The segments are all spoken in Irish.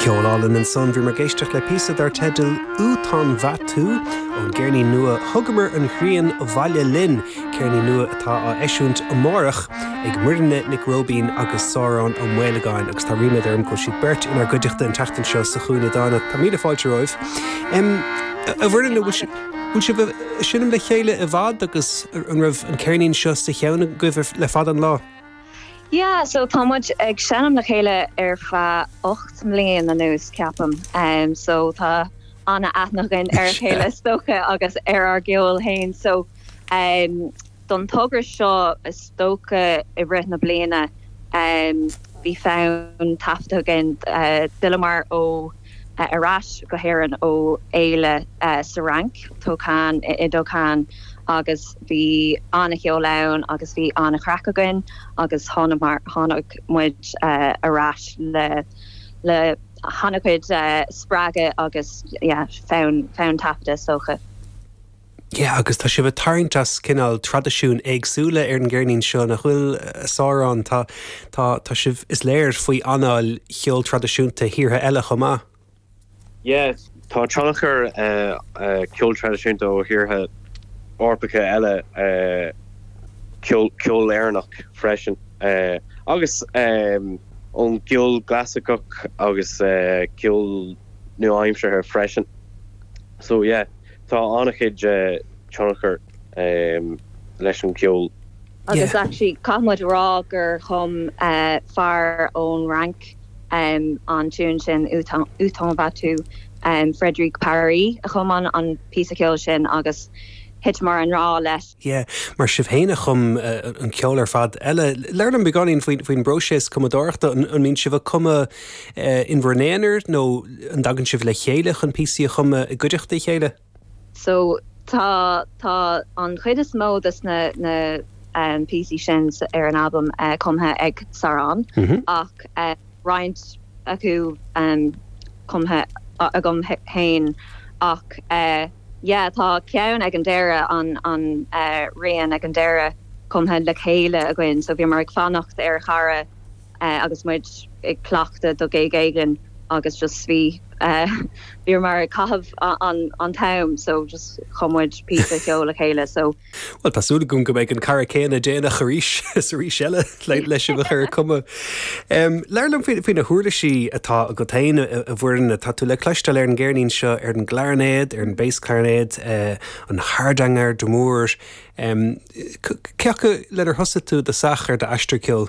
Ceol álainn ansan, bhíomar ag éisteacht le píosa dar teideal 'Où t'en vas tu' ón gceirnín nua 'Thugamar an Ghrian Abhaile Linn', ceirnín nua atá á eisiúint amárach ag Muireann Nic Róibín agus Sárán Ó Maolagáin agus tá ríméad orm go bhfuil siad beirt inár gcuideachta an tseachtain seo sa Chúinne Dána, tá míle fáilte romhaibh. A Mhuireann, an bhfuil sibh ag seinm le chéile i bhfad agus an raibh an ceirnín seo sa cheann agaibh le fada an lá? Yeah so tá muid ag seinm le chéile ar feadh ocht mbliain anuas ceapaim em so tá an-aithne againn ar a chéile is dócha agus ar ár gceol féin so em don togra seo is dócha i rith na bliana em bhí fonn taifeadta againn eh d'fhilleamar ó ar ais go hÉirinn ó fhéile sa Fhrainc, Tocane i dTocane agus bhí an-cheol ann agus bhí an-chraic againn agus tháinig muid ar ais le han-chuid spreagadh agus yeah fonn taifeadta is dócha. Yeah agus tá sibh ag tarraingt as cineál traidisiúin éagsúla ar an gceirnín seo nach bhfuil a Sháráin. Tá, tá, tá sibh, is léir, faoi anáil cheol traidisiúnta thíortha eile chomh maith. Yeah, tá tionchar ceol traidisiúnta ó thíortha Eorpacha eile, ceol Éireannach freisin agus ón gceol gclasaiceach agus ceol nua-aimseartha freisin. So yeah, Tá an-chuid tionchar leis an gceol. Agus actually caithfidh muid a rá gur chum fear ón Fhrainc an tiún sin, Où t'en vas tu? Frédéric Paris a chum an píosa ceoil sin agus thiteamar i ngrá leis. Yeah, mar sibh féin a chum an ceol ar fad eile. Labhair liom beagáinín faoin bpróiseas cumadóireachta. An mbíonn sibh ag cumadh in bhur n-aonar nó an dtagann sibh le chéile chun píosaí a chumadh i gcuideachta a chéile? So, tá, tá an chuid is mó de na, na um píosaí sin ar an albam cumtha ag Sárán ach eh. roinnt acu cumtha agam féin ach yeah tá ceann ag an deireadh, an rian ag an deireadh cumtha le chéile againn so bhíomar ag fanacht ar chara agus muid ag cleachtadh do ghig éigin agus just bhí eh bhíomar ag caitheamh an t-am so just chum muid píosa ceoil le chéile so Bhuel, tá súil agam go mbeidh an cara céanna déanach arís is arís eile le sibh a chur ag cumadh. Labhair liom faoi na huirlisí atá agat féin a Mhuireann. Tá tú le cloisteáil ar an gceirnín seo ar an gclarinéad, ar an bass clarinet, an hardanger d'amore. Cé acu lenar thosaigh tú i dtosach ar d'aistear ceoil?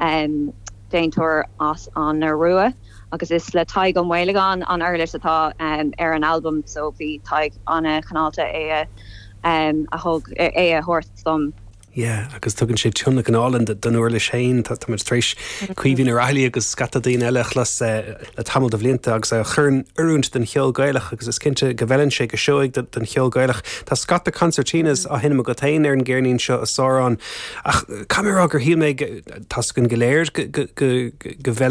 Am, Déantóir as an Iorua agus is le Tadhg Ó Maolagáin an uirlis atá ar an albam so bhí Tadhg ana-chineálta é a thabhairt dom. Yeah agus tugann sé tionlacan álainn don uirlis féin. Táimid tar éis Caoimhín Ó Raghallaigh agus scata daoine eile a chlos le tamall de bhlianta agus á chur in oiriúint don cheol Gaelach agus is cinnte go bhfeileann sé go seoigh don cheol Gaelach. Tá scata concertinas á seinm agat féin ar an gceirnín seo a Shaileog. Ach cad a rá gur shíl mé, taispeáin go léir go bhfeileann.